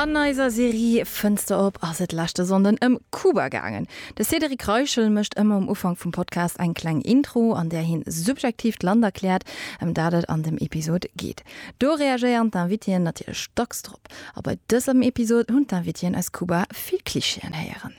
An eiser Serie Fënster op ass et leschte Sonnden ëm Kuba gaangen. De Cédric Reichel mécht ëmmer um Ufank vum Podcast eng kleng Intro, an där hie subjektiv d'Land erkläert, ëm dat et an dem Episod geet. Do reagéieren d'Invitéen natierlech dacks drop. A bei dësem Episod hunn d'Invitéen aus Kuba vill Klischeeën héieren.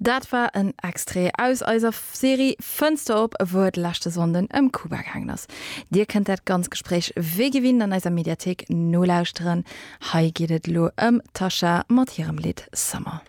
Dat war en Extrait aus eiser Serie Fënster op, wou et leschte Sonnden ëm Kuba gaangen ass. Dir kënnt dat ganz Gespréich wéi gewinnt an eiser Mediathéik nolauschteren. Hei geet et elo ëm d'Tasha mat hirem Lidd Summer.